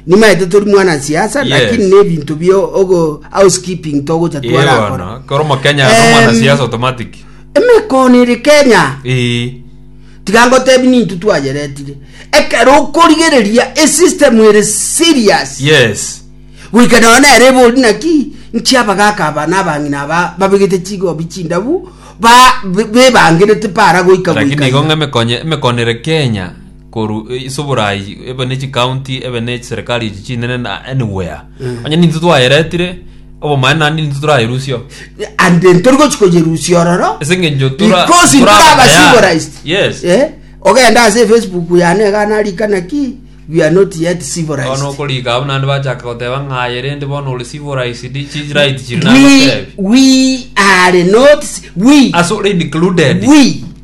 Nimaete tori mwana siasa Yes. lakini ne ebinto bio ogo housekeeping togocha Yee twarakora. bono kero mokenya no Em, mwana siasa automatic Emekono ere Kenya. ee tiga ngotebi nintu twayeretire ekero okorigereria esystem ere serious yes goika nao nere ebori naki nchi abagaka aba na abang'ina aba babegete chigobi chindabu ba- be- bebangerete para goika lakini goika igo ng'a emekonye emekonere kenya korwa ase oborai ebe ne chikaunti ebe ne chiserikari echi chinene na anywhere onye ninto twayeretire obomaene naende ninto torayerusia and ntori gochi koyerusia ororo ase eng'encho tora- because toraba toraba tayari. civilized yes Eh, ogenda ase facebook yane iga narikana ki we are not yet bono civilized okorika abwo naende bachaka goteba ng'aye rende bono ore civilized chi right chiri we, nagotebi we are not ci- we ase ore included we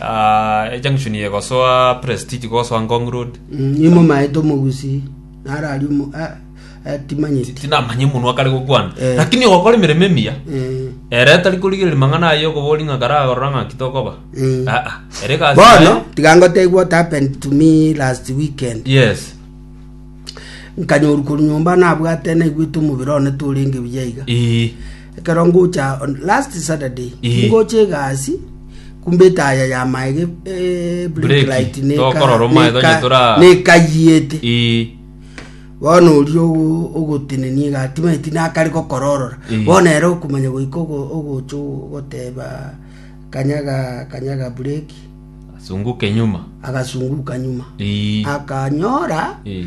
Ah, ejunction ye gosoa prestige gosoa ngong road Imo maete omogusi narari omo ah, eh, timanyeti. tinamanye munwa kare gokwana Eh. lakini ogokora emeremo emiya Eh, ere atari korigereria mang'ana aye okobori ng'a kare agorora ng'aki tokoba Mm. aa ere egasi Bono yaye- tiga ngotebie what happened to me last weekend. yes Nkanyoru koru nyomba nabwate naigwete omobere one torenge buya iga. ii Ekero ngocha on last Saturday, Ii. tingocha egasi, kumbe etaya ya maega e- e- blink Breki, light neka- tokorora omaega neka- onye tora- nekayiete. Ii. bono oria ogo- ogotenenia egati maeti nakare gokororora Eh. bono ere okomanya goika ogo- ogocha ogoteba kanyaga kanyaga bureki Sunguke nyuma. agasunguka nyuma Ii. akanyora Ii.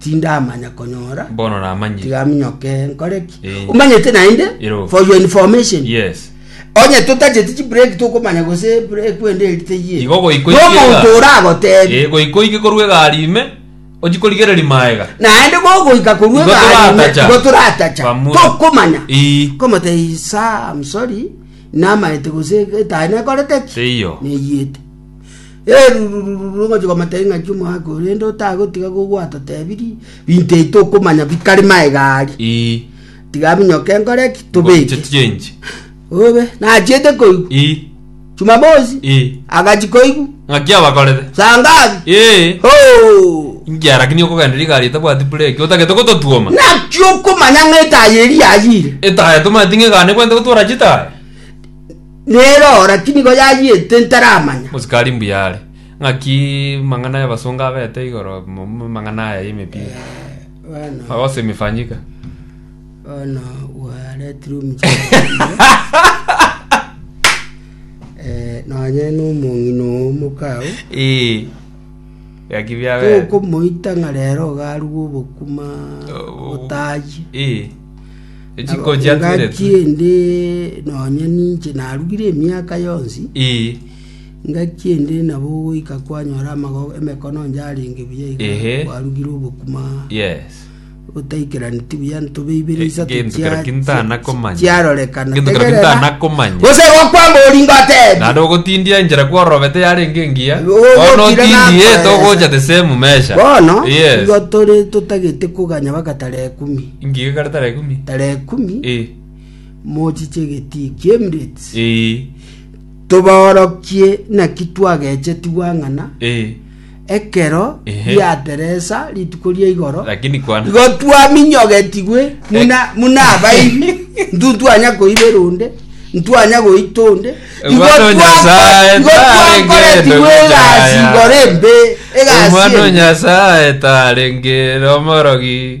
tindamanya konyora bono namanyire tiga minyoke nkore ki Eh. omanyete naende Ero. for your information yes onye totacheti chibreak tokomanya gose break wende erite yie Igo goiko ikiega. nomonto oragotebi Eh, goiko ike korwa egari ime ochikorigereri maega naende gogoika korwa Igo egarime toratacha. igo toratacha Bamura. tokomanya Ii. komata isa am sorry namaete gose etae nekorete ki Teiyo. neyiete Erururururu ngochia komoteebia ng'aki omoaka oyo, rende otagotiga gogwatotebirie binto ebi tokomanya bikare maega aria. Ii. Tiga minyoka enkore ki? Tobeke. Chechenji. Obe nachiete koigwa. Ii. Jumamosi Ii. agachi koigwa. Ng'aki abakorete. Saa ngapi? Ee. Ho! Ingia lakini okogenda rigari etabwati bureki otagete gototuoma. Naki okomanya ng'a etaaya eria yayire. Etaya tomanyeti ng'egane kwente gotora chitaya. Nero ora tinigo yayiete ntaramanya. Mosikari mbuya are. Ng'aki mang'ana y'abasongo abete igoro mu mang'ana aya y'emepira? Bono Makosa imefanyika. bono gwaretirwe omuchando eh, nonye nomong'ina oo mokao Ee. Ng'aki biabete. tokomoita ng'a rero ogarue obokuma Oh. otayi Ee. Echiko Nabo chiatweretwe. engaki ende nonya ninche narugire emiaka yonsi, Ii. engaki ende nabo goika kwanyora amago- emekono onde arenge buya iga Ehe. kwarugire obokima Yes. botaikeraneti buya ntobe ibere Ge- isato gento chia- keraki ntana chia- komanya. chiarorekana Gento keraki Tegerera. ntana komanya. gose gokwama oringo atebi Naende ogotindia enchera kworobete yarenge engiya. Ogokira Bono otindie nakoesa. togocha the same measure. bono Yes. igo tore totagete koganya bagatara ekumi Ngika ekare tara ekume. tara ekumi Eh. mochiche egetii ki'Emirates Eh. tobaorokie naki twagechetigwa ng'ana Eh. ekero Ehe. riateresa rituko ria igoro Lakini kwana. igo twaminyogetigwe muna muna abaibi ntu twanya koibe runde ntwanya goita onde igo Omwana o twako- Nyasaye, igo twakoretigwe twaregete egasi gutaya. igoro embe egasi Omwana o embe. Nyasaye tarenge omorogi.